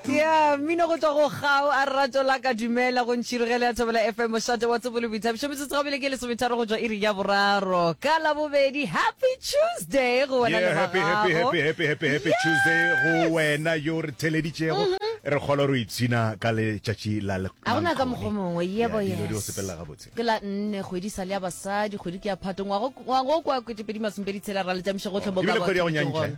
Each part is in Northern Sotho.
Yeah, mmino go tswa go gao a rato la ka dumela go ntšhirigele ya thobela fm mošate wa tsebole boithabišo metsotso ga bile ke lesometharo go tswa iri ya boraro ka labobedi happy tuesday go wena Yeah, le happy, happy, bagago happy, happy, happy, happy Tuesday go wena yo re theleditšego re kgolo re ipshina ka letšatši la le- ga gona ka Mankgone. mokgwa mongwe Yeah, yebo dilo di o sepelela yes gabotse ke la nne kgwedi sa le ya basadi kgwedi ke ya phato ngwago ngwago kwa kwetepedi masomepedi tshela ra letamiša gotlhe bo Ebile ka kgwedi ya go batho nyantšha, gona.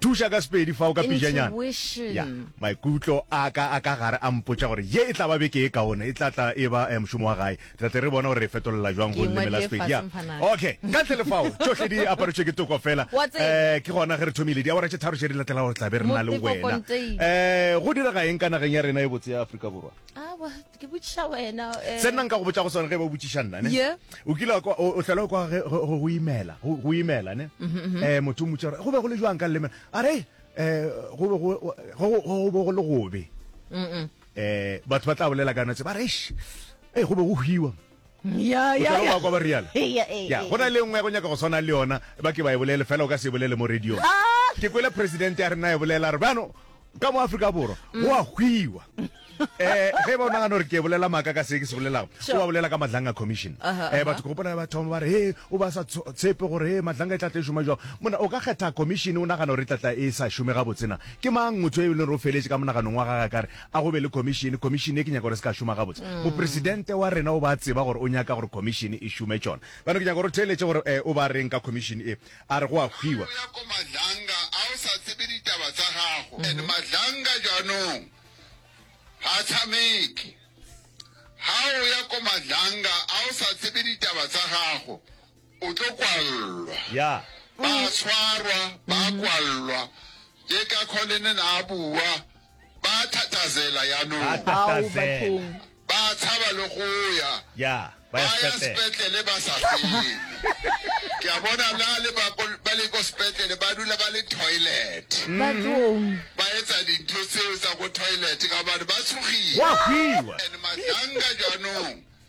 thuša ka sepedi fa o ka pijanyana ya maikutlo a ka a ka gare a mpotša gore ye e tla ba beke e kaone e tla tla e ba eh, mošomo wa gae tlatle re bona gore re e fetolela jwang go leme la sepedi ya okay ka tle lefao tsohle di aparetswe ke toko fela um ke gona ge re thomile diawara tše tharo tše di latela gore tlabe re na le wena um go direga eng ka nageng ya rena e botse ya aforika borwa ke botšiša wena eh. se nna nka go botša go sone ge ba botšiša nna ne Yeah. o kile wa kwa- o o tlhela kwa ge- go go imela go go imela ne Mm-hmm, um motho o motša gore go be go le jwang ka leleme a re um go be go- go- go- go be go le gobe um batho ba tla bolela ka notse ba re "Eish, ee go be go hwiwa ya ya ya kwa ba rialo ya go na le nngwe ya go nyaka go tshwana le yona ba ke ba e bolele fela o ka se e bolele mo radio ah! ke kwele presidente ya rena e bolela re bano ka mo aforika borwa mm. go a hwiwa um eh, ge ba o nagana gore ke bolela maaka ka se ke se bolelago o ba bolela ka madlanga commission um batho ke gopona ba thoma ba re he o ba sa tshepe gore he madlanga e tlatla e šoma jang mona o ka kgetha commission o nagana gore e tlatla e sa šome ga botsena ke mang motho e leng re o feletse ka monaganong wa gaga kare A go be le khomišene, khomišene ye ke nyaka gore e se ka šoma gabotse. Mopresidente wa rena o ba tseba gore o nyaka gore khomišene e šome tšona. Bjalo ke nyaka gore o theeletše gore e, o ba reng ka khomišene e. A re go a hwiwa. Go ya ko Madlanga a o sa tsebe ditaba tsa gago and Madlanga jwanong ha tshameke ha o ya ko Madlanga a o sa tsebe ditaba tsa gago. O tlo kwallwa. Ya. Ba tshwarwa, ba kwallwa. Ke ka kho le nena a bua. Ba thatazela yanong. Ba tatazela. Ba tshaba le go ya. Ya, ba ya sepetlele. Ba ya sepetlele ba sa fele. Ke a bona la le ba ko ba le ko sepetlele ba dula ba le toilet. Bathong. Ba etsa dintho tseo tsa ko toilet ka hobane ba tshogile. Wa fiwa. And matlanga janong.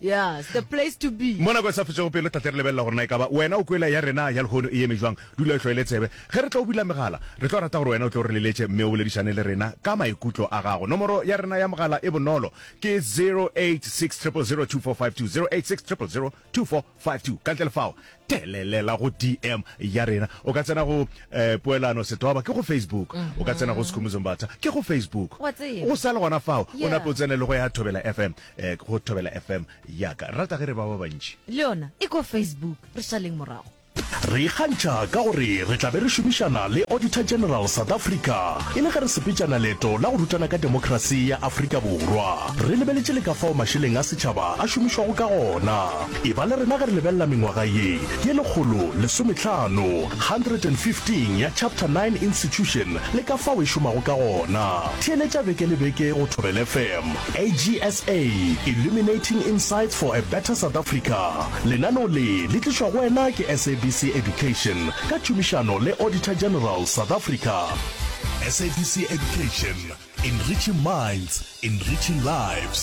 Yes, the place to be. Mo nako e sa fetšego pelo tla tle re lebelela gore na e ka ba wena o kwela ya rena ya lehono e eme jwang. Dula o hloile tsebe. Ge re tlo bula megala, re tlo rata gore wena o tle o re leletše mme o boledišane le rena ka maikutlo a gago. Nomoro ya rena ya mogala e bonolo, ke 0860002452, 0860002452. Ka ntle le fao, Telelela go DM ya rena. O ka tsena go eh, Poelano Setoba ke go Facebook. O ka tsena go Sikhumbuzo Mbatha ke go Facebook. Wa tseba. Go sa le gona fao, o Yeah. nape o tsene le go ya Thobela FM, eh, go Thobela FM ya ka. Rata ge re ba ba bantši. le yona e ko facebook re šaleng morago Re ikgantšha ka gore re tla be re šomišana le Auditor General South Africa e le ge re sepetšana leeto la go rutana ka demokrasi ya Afrika Borwa. Re lebeletše le ka fao mašeleng a setšhaba a šomišwago ka gona. E ba le rena ge re lebelela mengwaga ye ye lekgolo lesometlhano, 115, ya Chapter 9 Institution le ka fao e šomago ka gona. Theeletša beke le beke go Thobela FM, AGSA, Illuminating Insights for a Better South Africa. Lenaneo le le tlišwa go wena ke SABC Education ka tšhomišano le Auditor General, South Africa. SABC Education, Enriching minds, enriching lives.